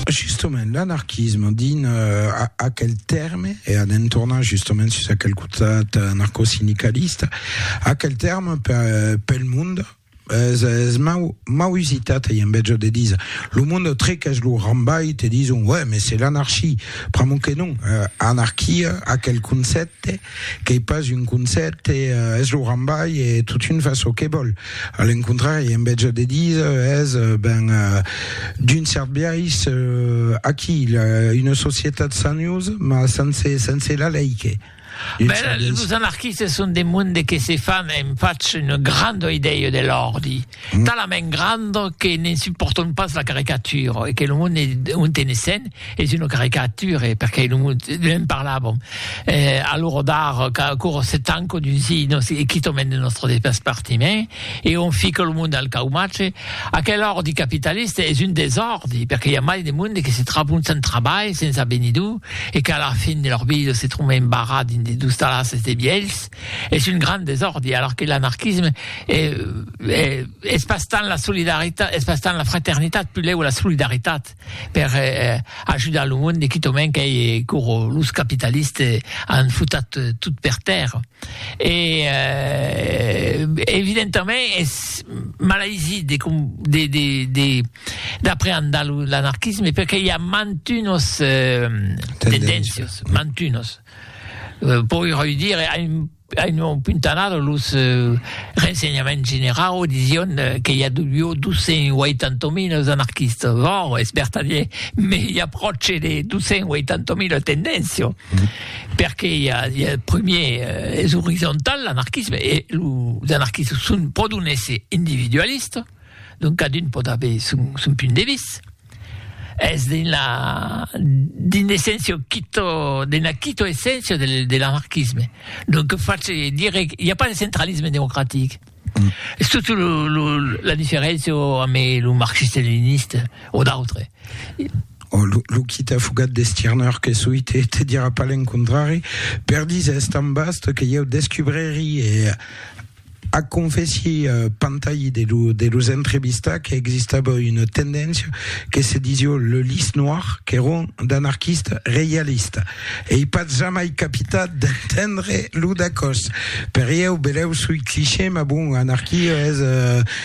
Justement, l'anarquisme, dins uh, aquel terme, e anem tornar justement sus aquel costat anarcosindicalista, aquel terme per, pel mond, es, es mau, mau usitat e enveja de dire lo mond treques lo rambai te dison ouais mais c'est l'anarchie pr'amor que non uh, anarquia aquel concepte Qu'ei pas un concèpte, es lo rambai e totun fa çò que vòl. A l'encontrari, en vètja de díser, es, ben, d'un cèrt biais, aquí, una societat sanhosa, mas sense, sense la lei que. Bèla, los anarquistes son de monde que se fan, e'm fach una granda idèia de l'òrdi. talament grand que ne'n supportons pas la caricature e que lo monde on tenessen es una caricature perque lo monde ne'n parlàvem e alora d'ara qu'aquò se tanca dins si nos quitament de nostre despartiment e on fica lo monde al caumatge aquel ordi capitalista es un desòrdi perque i a mai de monde que se tròbon sens trabalh sens avenidor e qu'a la fin de lor vida se tròben barrats dins de dostalasses de vielhs es un grand desòrdi, alors que l'anarquisme es pas tant la solidaritat, es pas tant la fraternitat, pulèu la solidaritat per ajudar lo monde, quitament qu'ei coro los capitalistes an futat tot per tèrra. E evidentament es malaisit de de d'apreandar l'anarquisme perque i a mantunos tendéncios, mantunos. Poi reüdire a un a un nom puntanada los rensenhaments generau disión que i a duió 280.000 es anarquistas, vòr es vertadier, me i a pròche de 280.000 tendéncio, perque i a i a prumier es orizontal l'anarquisme e los anarquistas son pro d'un èsser individualista, donc cadun pòt aver son son punt de vist. Es d'una d'un essencio quito d'una quito essencio de de l'anarquisme. Donc face dire i a pas de centralisme democratic. Es totu lo lo la diferencio ame lo marxiste leniniste o d'autre. O lo lo quita fugat de Stirner que soi te te dira pas l'encontrari per diser es tan vast que ieu descubreri e Ac confèssi Pantayi de lo de los entrevistats que existava una tendéncia que se disió le lys noir qu'èron d'anarquistes reialistes. Ei pas jamai capitat d'entendre lo dacòs. Per ieu, belèu soi cliché, mas bon, anarquia es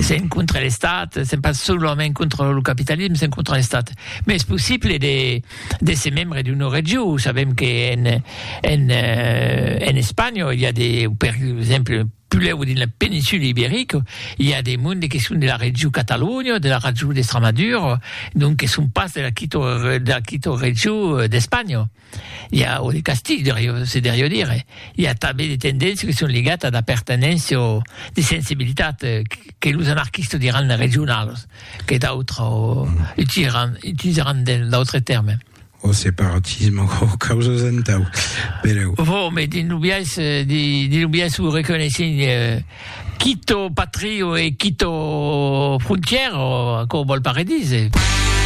S'en contra l'Estat, s'en pas solament contra lo capitalisme, s'en contra l'Estat. Mais es possible de, de se membre d'una regió. Sabem que en, en, eh, en Espanya, il y a des, per exemple, puleu dins la péninsule ibérique, il y a des mondes qui sont de la regió Catalunya, de la regió d'Estramadura, donc que sont pas de la quito, de la quito regió d'Espanya. i a un castilh de riu se deriu dire i a tanben de tendéncia que son ligat a d'apertenéncia o de sensibilitat que los anarquistas diràn de regionalos que d'autres o utilizaràn utilizaràn d'autres tèrmes o separatisme o causas entau pereu vò me dins lo biais dins lo biais o reconeissent quito patrio e quito frontièra o aquò vòl pas redire.